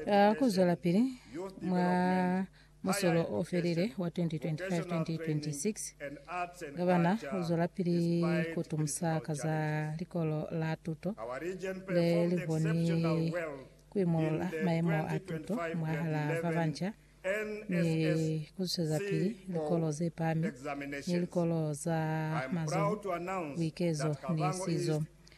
Ka ku zwelapili mwa musolo o felile wa 2025-2026, Gavana u zwelapili ku tumusa ka za Likolo la Tuto le li koni ku imulula mayemo a tuto mwahal'a ba banca ni ku zwezapili likolo ze pami ni likolo za mazoho, buikezo ni sizo.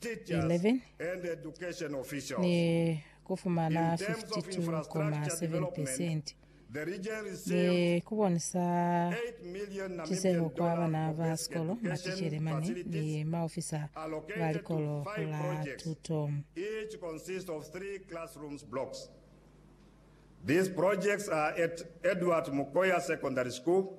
11 ni ku fumana 52,7 pesenti ni ku bonisa tiseho kwa bana ba sikolo, maticele mane ni maofisa ba likolo la tuto. These projects are at Edward Mukoya Secondary School,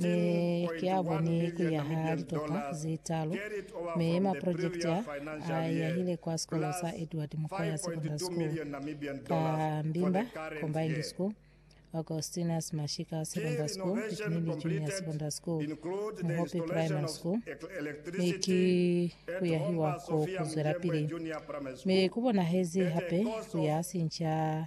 Mi ki a boni ku yaha litopa ze talu, mi maprojekiti a, a yahile kwa sikolo sa Edward Mukwaya Secondary School, ka Mbimba Combined School, Augustinus Mashika Secondary School, Ipinili Junior Secondary School, Muhopi Primary School, mi ki ku yahiwa ko ku zwelapili. Mi ku bonahezi hape ku ya sinca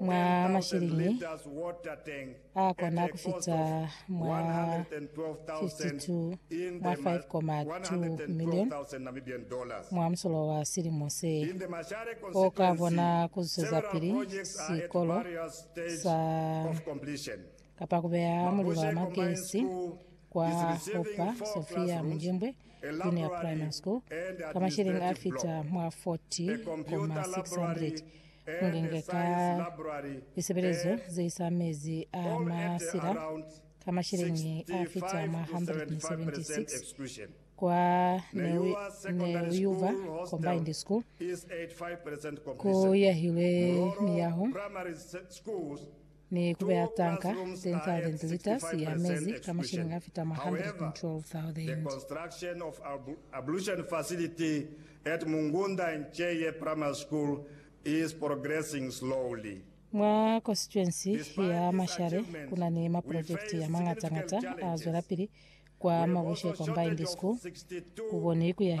mwa mashilingi a kona ku fita mwa 52 mwa 5,2 million mwa musolo wa silimo se. O ka bona ku zwezapili sikolo sa kapa ku beya mulilo wa magesi kwa Hooper Sophia Mujembwe Junior Primary School ka mashilingi a fita mwa 40,600 Mungengeta lisebelezo zeisa mezi a masila ka masheleñi afita mwa 176 kwa Neuyuva Combined School, kuyahilwe miyaho ni ku beya tanka teñi ka lentilitas ya mezi ka mashilingi a fita mwa 112,000. Mwa konsituensi ya Mashare ku na ni maprojekiti a mañata-ñata a zwelapili kwa Mabushe Combined School, ku boni ku ya hi